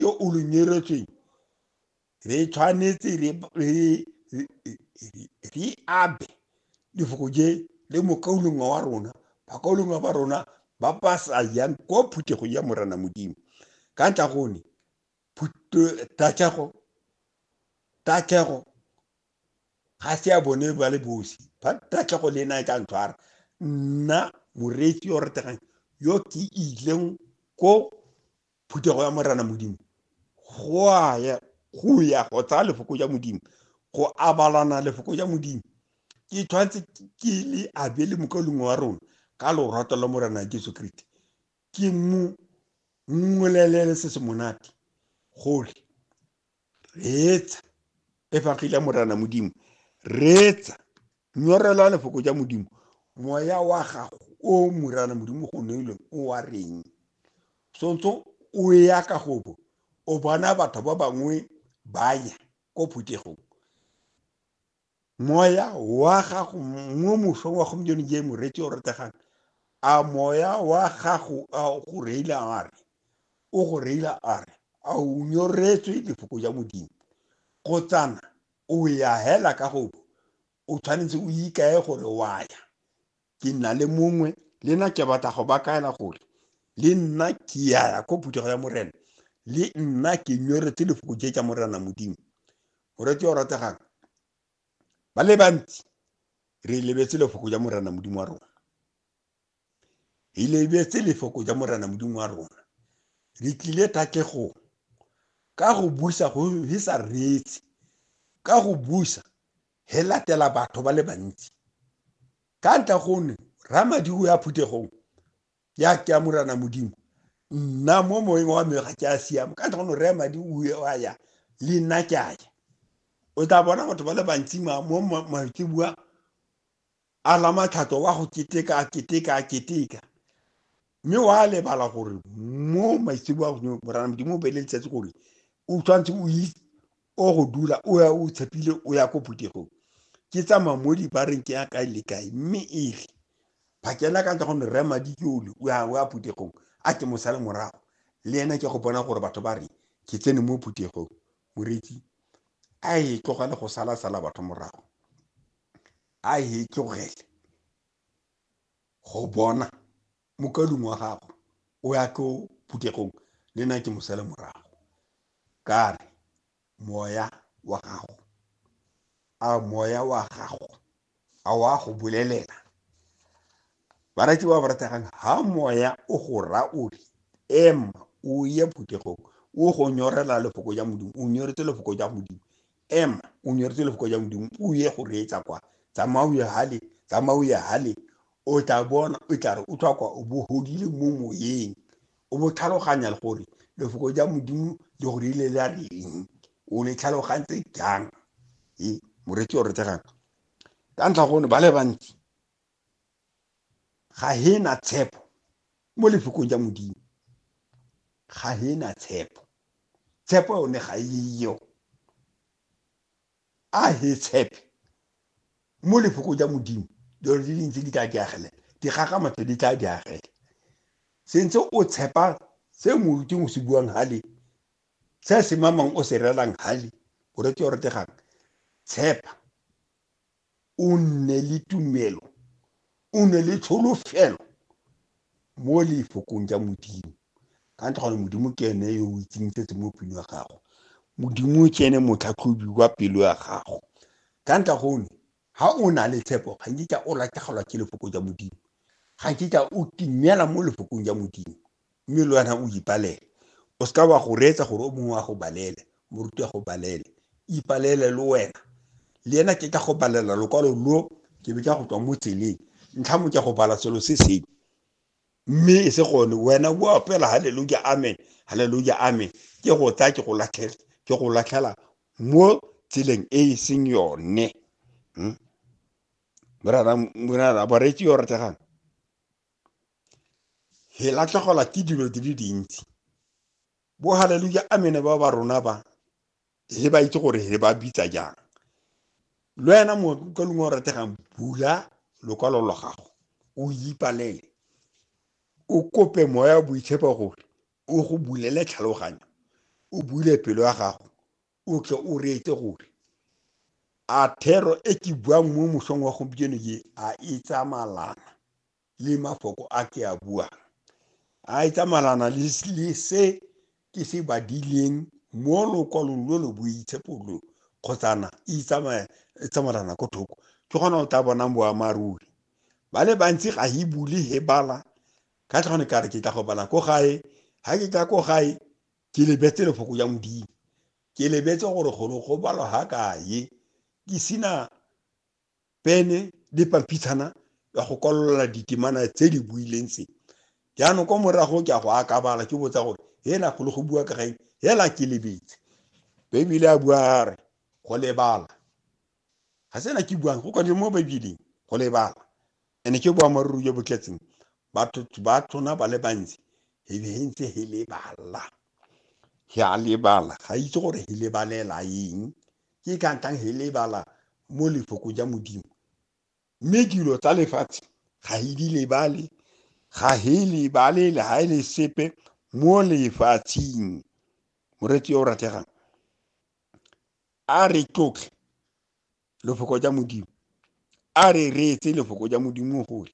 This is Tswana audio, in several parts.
yo o lo nyeretsweng re tshwanetse re abe lefoko je le mokaulongwa wa rona bakaulongwa ba rona ba ba sa yang kwa phuthego ya morana modimo ka ntla gone tatlhego tatlhego ga se ya bone ba le bosi ba tatlhego le ena e tla ntshwara nna moreetsi yo rategang yo ke ileng ko phuthego ya morena modimo go a ya go ya go tsaya lefoko ja modimo go abalana lefoko ja modimo ke tshwanetse ke le abele mokalongwe wa rona ka lorato la morena jesu kriste ke mo mmolelele se se monate gore reetsa e fagile morana modimo reetsa nyorelwa lefoko ja modimo moya wa gago o morana modimo go neilweng o wa reng sontso o ya ka gobo o bona batho ba bangwe ba ya ko phuthegong moya wa gago mo mosong wa gompieno je moreetsi o rategang a moya wa gago a go reila a re o go reila a re a o nyoretswe lefoko ja modimo go tsana o ya hela ka gobo o tshwanetse o ikae gore wa ya ke nna le mongwe le nna ke batla go ba kaela gore le nna ke yaya ko phuthego ya morena le nna ke nyoretse lefoko je tsa morena modimo moretse o rategang ba le bantsi re lebetse lefoko ja morena modimo wa rona re lebetse lefoko ja morena modimo wa rona re tlile takegong ka go busa go re sa reetse ka go busa he latela batho ba le bantsi ka ntla gone ramadiko ya phuthegong ya ke amorana modimo nna mo moeng wa me ga ke a siama ka ntla gone re madi o a ya le nna ke a ya o tla bona batho ba le bantsi mo maitsebua a lamatlhato wa go keteka a keteka a keteka mme wa lebala gore mo maitsebo a godimo morana modimo o beele letsatsi gore o tshwanetse o itse o go dula o ya o tshepile o ya ko phuthegong ke tsamaya mo dibareng ke ya kae le kae mme e re phakela ka ntle gonne rre madi ke ole o ya o ya phuthegong a ke mosale morago le ena ke go bona gore batho ba re ke tsene mo phuthegong moretsi a e tlogele go sala sala batho morago a e tlogele go bona mokalung wa gago o ya ko phuthegong le nna ke mosele morago ka re moya wa gago a moya wa gago a wa go bolelela barati ba ba rategang ha moya o go ra o re ema o ye phuthegong o go nyorela lefoko ja modimo o nyoretse lefoko ja modimo Ema, o nyoretse lefoko ja modimo o ye go reetsa kwa tsamaya o ye hale tsamaya o ye hale o tla bona o tla re o tlhwa kwa o bo godile mo moyeng o bo tlhaloganya le gore lefoko ja modimo le go rile la reng o le tlhalogantse jang e moreetsi o retegang ka ntlha gone ba le bantsi ga he na tshepo mo lefokong ja modimo ga he na tshepo tshepo yone ga eyo a he tshepe mo lefokong ja modimo dilo di dintsi di tla di agele di gagamatso di tla di agele sentse o tshepa se moruting o se buang hale se se mamang o se relang hale o rete o retegang tshepa o nne le tumelo o nne le tsholofelo mo lefokong ja modimo ka ntle gone modimo ke ene yo o itseng se se mo pelo ya gago modimo ke ene motlhatlhobi wa pelo ya gago ka ntle gone ha o na le tshepo ga nkitla o latlhegelwa ke lefoko ja modimo ga nkitla o timela mo lefokong ja modimo mme le wena o ipalele o seka wa go reetsa gore o mongwe wa go balele moruti wa go balele ipalele le wena le ena ke ka go balela lokwalo lo ke be ka go tswa mo tseleng ntlha mo ke go bala selo se seng mme e se gone wena o opela haleluja amen haleluja amen ke go tsaya ke go latlhela ke go latlhela mo tseleng e e seng yone hmm? morara morara bareetsi yo rategang Re latlhegelwa ke dilo di le dintsi. Bo haleluya amene ba ba rona ba, re ba itse gore re ba bitsa jang. Le wena ka lengwe o rategang, bula lokwalo lwa gago, o ipalele, o kope moya wa boitshepo gore o go bulele tlhaloganyo, o bule pelo ya gago, o tle o reetse gore a thero e ke buang mo mosong wa gompieno ye a e tsamalana le mafoko a ke a buang a e tsamalana le se ke se badileng mo lokwalong lo lo boitshepo lo kgotsana e tsamalana ko thoko ke gona o tla bonang boammaaruri ba le bantsi ga e bule he bala ka tlhone ka re ke tla go bala ko gae ga ke tla ko gae ke lebetse lefoko ya modimo ke lebetse gore golo go balwa ga kae ke sena pene le pampitshana ya go kwalola ditemana tse di buileng tse jaanong kwa morago ke a go akabala ke botsa gore hela golo go bua ka gaeng hela ke lebetse baebile a bua a re go lebala ga sena ke buang go kwadile mo baebeleng go lebala Ene ke boammaaruri jo bo tletseng batho ba tona ba le bantsi he ntse he lebala he a lebala ga itse gore he lebalela eng ke ka ntang he lebala mo lefoko ja modimo mme dilo tsa lefatshe ga he di lebale ga he lebale le ga e le sepe mo lefatsheng moretsi yo o rategang a re tlotlhe lefoko ja modimo a re reetse lefoko ja modimo gole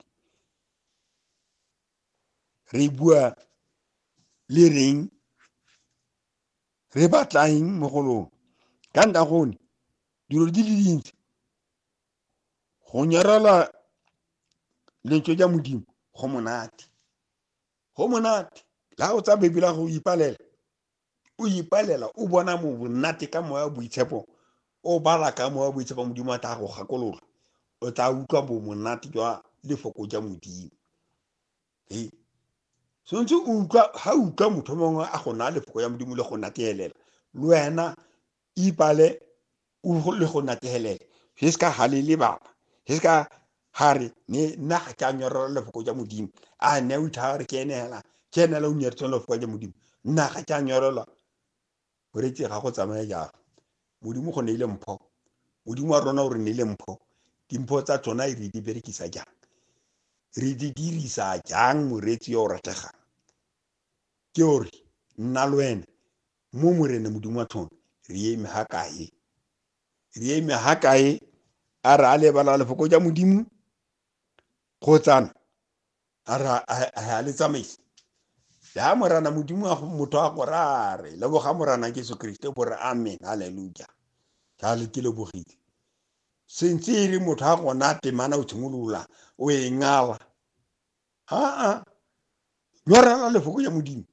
re bua le reng re batlaeng mo go lone ka nta gone dilo di le dintsi go nyarela lentswe ja modimo go monate go monate la o tsa bebela go ipalela o ipalela o bona mo bonnate ka moya boitshepo o bala ka moya boitshepo modimo a tla go gakololo o tla utlwa bo monate jwa lefoko ja modimo e tshwanetse o utlwa ga utlwa motho mongwe a go naya lefoko ya modimo le go nateelela le wena Ipale u le go natehelele. He se ka halele baba. He se ka ha re ne nna ga ke a nyorela lefoko ja modimo a ne o itha re ke ene hela ke ene la o nyeretseng lefoko ja modimo nna ga ke a nyorela o retse ga go tsamaya jalo modimo go ne ile mpho modimo wa rona o re ne ile mpho dimpho tsa tsona e re di berekisa jang re di dirisa jang moreetsi yo o rategang ke ore nna le wena mo morene modimo wa tlhono re eme ha kae re eme ha kae a re a lebala lefoko ja modimo kgotsana a re a le tsamaisa ya morana modimo wa motho a go rare leboga morana jesu kriste bo re amen halleluja jale ke lebogile sentse e re motho a gona temana o tshimolola o e ngala Aa, nyorela lefoko ya Modimo.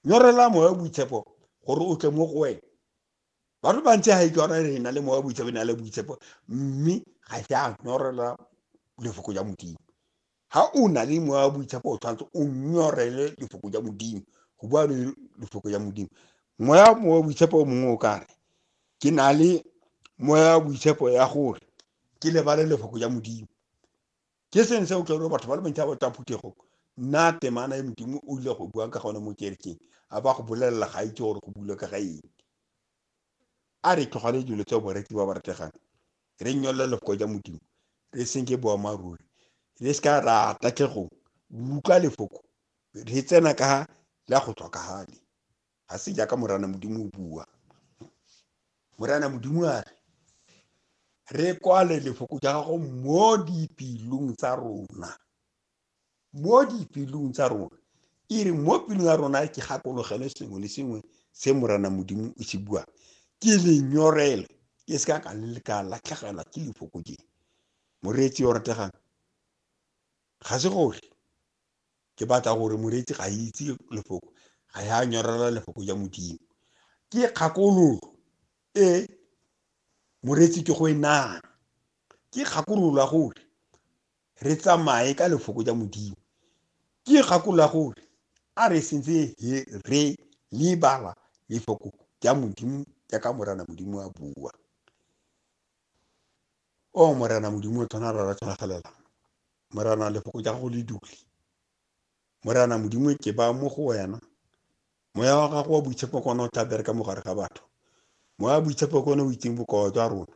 Nyorela moya wa boitshepo gore o tle mo go wena. Batho bantsi ga e ke ora re na le moya wa boitshepo, na le boitshepo, mme ga se a nyorela lefoko ya Modimo. Ha o na le moya wa boitshepo o tshwanetse o nyorele lefoko ya Modimo, go bua le lefoko ya Modimo. Moya wa boitshepo o mongwe o ka re, ke na le moya wa boitshepo ya gore ke lebale lefoko ya Modimo. ke seng se o tla batho ba le bantsi ba tla phuthegong nna temana e modimo o ile go buang ka gone mo kerekeng a ba go bolelela ga itse gore go bule ka ga eng a re tlogale dilo tse boreki ba ba rategang re nnyolele lefoko ja modimo re senke boammaaruri re se ka ra tatlhegong utlwa lefoko re tsena ka la go tlhokagale ga se jaaka morana modimo o bua morana modimo a re re kwale lefoko ja gago mo dipelong tsa rona mo dipelong tsa rona e re mo pelong ya rona ke gakologele sengwe le sengwe se morana modimo o se buang ke lenyorele ke se ka ka le ka latlhegelwa ke lefoko je moreetsi o rategang ga se gore ke batla gore moreetsi ga itse lefoko ga ya nyorela lefoko ja modimo ke kgakololo e moreetsi ke go e nang ke kgakololo ya gore re tsamaye ka lefoko ja modimo ke kgakololo ya gore a re sentse re lebala lefoko ja modimo jaaka morana modimo a bua o morena modimo o tshwana rara tshwanagalela morena lefoko ja gago le dule morena modimo ke ba mo go wena moya wa gago wa boitshepo kone o tla bereka mo gare ga batho moya wa boitshepo kone o itseng bokao jwa rona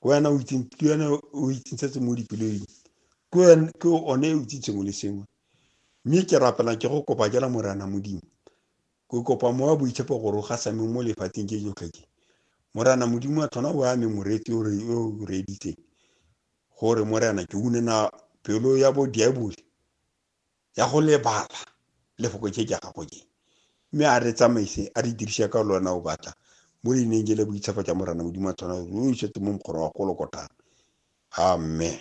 ke wena o itseng ke wena o itseng setse mo dipeleng ke wena ke one o itseng sengwe le sengwe mme ke rapela ke go kopa jela morena modimo Ke kopa mowa boitshepo gore o gasame mo lefatsheng je jotlhe je. Morena Modimo wa tlhona o ame moreetsi o re o reeditseng gore Morena ke une na pelo ya bo diabole ya go lebala lefoko je ja gago je. Mme a re tsamaise a re dirise ka le wena o batla mo leineng je le boitshepo ja Morena Modimo wa tlhona o isetse mo mokgoro wa kolokotana. Amen.